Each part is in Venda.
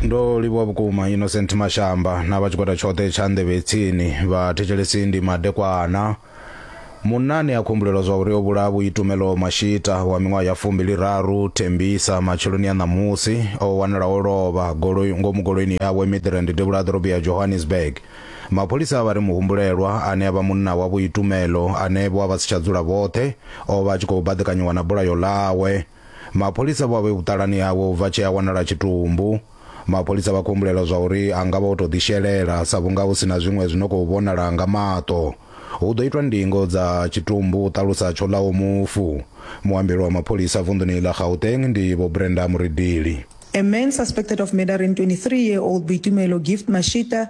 ndo livhuwa vhukuma innocent mashamba na vha tshigwada tshoṱhe tsha nḓevhe tsini vha thetshelesi ndi madekwana munani a khumbulela zwa uri o vhulaha vhuitumelo mashita wa miṅwaha ya fumbili raru thembisa matsheloni a ṋamusi o wanala o lovha goloi ngomu goloini yawe midrand devhula a ḓorobo ya johannesburg mapholisa a vha ri muhumbulelwa ane a vha munna wa vhuitumelo ane vho a vha si tsha dzula vhoṱhe o vha a tshi khou baḓekanyiwa na bulayo ḽawe Mapholisa vho a vhe vhuṱalani hawe u bva tshee a wanala tshitumbu. Mapholisa vha khou humbulela zwa uri a nga vha o tou ḓishelela sa vhunga hu si na zwiṅwe zwi no khou vhonala nga maṱo. Hu ḓo itwa ndingo dza tshitumbu, hu ṱalusa Tshoḽaho mufu. Muambeli wa mapholisa vunḓuni ḽa Gauteng ndi Vho Brenda Muridili. A man suspected of murdering 23 year old Boitumelo Gift Mashita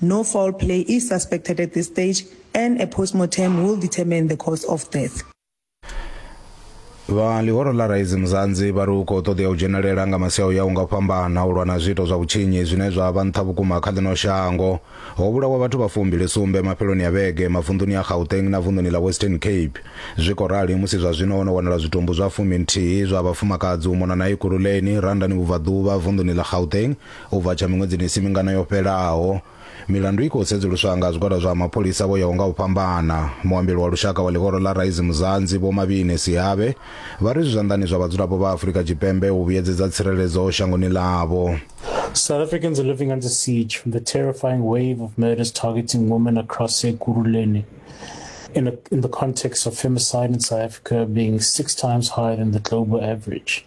No foul play is suspected at this stage and a postmortem will determine the cause of death. vha ḽihoro ḽa raisi muzanzi vha ri u khou ṱoḓea u dzhenelela nga masiao ya u nga fhambana u lwa na zwiito zwa vhutshinyi zwine zwa vha nṱha vhukuma kha ḽino shango ho vhulawa vhathu vha fumbili sumbe mafheloni a vhege mavunḓuni a gauteng na vunḓuni ḽa western cape zwi khou rali musi zwa zwino ho no wanala zwitumbu zwa fumi nthihi zwa vhafumakadzi u mona na ekuruleni randani vhubvaḓuvha vunḓuni ḽa gauteng U bva tsha miṅwedzini i si mingana yo fhelaho, milandu i khou sedzuluswa nga zwigwada zwa mapholisa vho yaho nga u fhambana. Muambeli wa lushaka wa ḽihoro ḽa Rise Mzansi, Vho Mabine Sihabe, vha ri zwi zwanḓani zwa vhadzulapo vha Afrika Tshipembe u vhuyedzedza tsireledzo shangoni ḽavho. South Africans are living under siege from the terrifying wave of murders targeting women across Ekurhuleni in, a, in the context of femicide in South Africa being six times higher than the global average.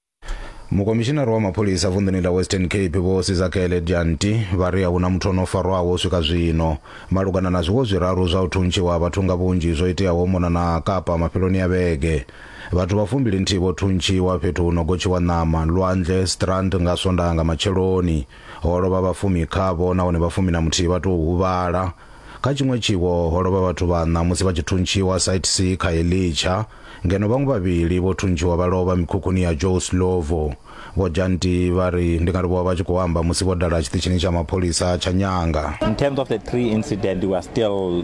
mukomishinari wa mapholisa vunḓuni ḽa western cape vho sizakele janti vha ri a huna muthu ono farwaho u swika zwino malugana na zwiwo zwiraru zwa u thuntshiwa vhathu nga vhunzhi zwo iteaho mona na kapa mafheloni ya vhege vhathu vha fumbili nthihi vho thuntshiwa fhethu hu no gotshiwa ṋama lwanzhe strand nga swondaha nga matsheloni Ho lovha vha fumi khavho nahone vha fumi na muthihi vha tou huvhala. Kha tshiṅwe tshiwo ho lovha vhathu vhaṋa musi vha tshi thuntshiwa site C kha Elitsha, ngeno vhaṅwe vhavhili vho thuntshiwa vha lovha mikhukhuni ya Joe Slovo. Vho Janti vha ri ndi nga ri vho vha vha tshi khou amba musi vho dala tshiṱitshini tsha mapholisa tsha Nyanga. In terms of the tree incident, we are still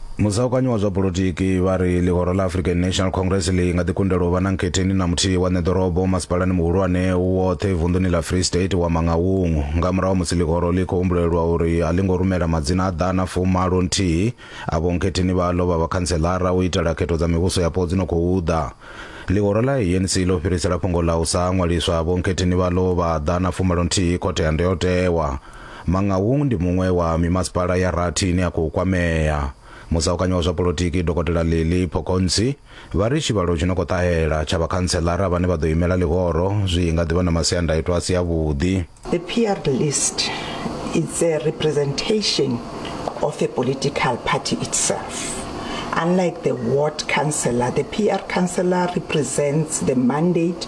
Musaukanyi wa zwa polotiki vha ri ḽihoro ḽa African National Congress ḽi nga ḓi kundelwa u vha na nkhetheni na muthihi wa ṋeḓorobo masipalani muhulwane u woṱhe vunḓuni ḽa Free State wa Mangaung nga murahu ha musi ḽihoro ḽi khou humbulelwa uri a ḽi ngo rumela madzina a ḓana fumalo nthihi a vhonkhetheni vhaḽo vha vhakhantseḽara u itela khetho dza mivhuso yapo dzi no khou ḓa. Ḽihoro ḽa ANC ḽo fhirisela fhungo ḽa u sa ṅwaliswa ha vhonkhetheni vhaḽo vha ḓana fumalo nthihi Khothe ya Ndayotewa. Mangaung ndi muṅwe wa mimasipala ya rathi ine ya khou kwamea. Musaukanyi wa zwa polotiki Dokotela Lily Phokontsi vha ri tshivhalo tshi no khou ṱahela tsha vhakhantseḽara vhane vha ḓo imela ḽihoro zwi nga ḓi vha na masiandaitwa a si avhuḓi. The PR list it's a representation of a political party itself. Unlike the ward councillor, the PR councillor represents the mandate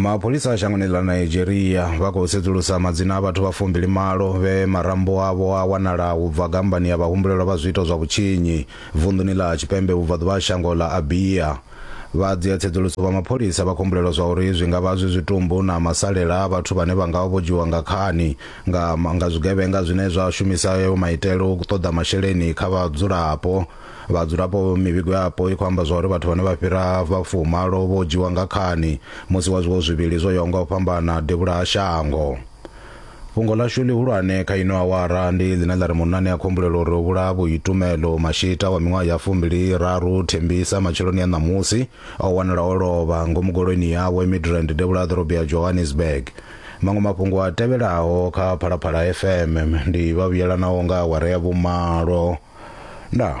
mapholisa a shangoni ḽa nigeria vha khou sedzulusa madzina a vhathu vha fumbili malo vhe marambo avho a wanala u bva gambani ya vhahumbulelwa vha zwiito zwa vhutshinyi vunḓuni ḽa tshipembe vhubvaḓuvha ha shango ḽa abia vha dzia tsedzuluso vha mapholisa vha khou humbulelwa zwa uri zwi nga vha zwi zwitumbu na masalela a vhathu vhane vha nga vha vho dzhiwa nga khani nga, nga zwigevhenga zwine zwa shumisa yo maitele u ṱoḓa masheleni kha vhadzulapo vhadzulapo mivhigo yapo i khou amba zwa uri vhathu vhane vha fhira vhafumalo vho dzhiwa nga khani musi wa zwiwo zwivhili zwo yaho nga u fhambana devhula ha shango fhungo ḽashu ḽihulwane kha ino awara ndi ḽine ḽa ri munani a khombulela uri o vhulaha vhuitumelo mashita wa miṅwaha ya fumbili raru thembisa matsheloni ya ṋamusi O wanala o lovha ngomu goloini yawe Midrand devhula ha ḓorobo ya Johannesburg. Maṅwe mafhungo a tevhelaho kha Phalaphala FM ndi vha vhuyelanaho nga awara ya vhumalo. Ndaa.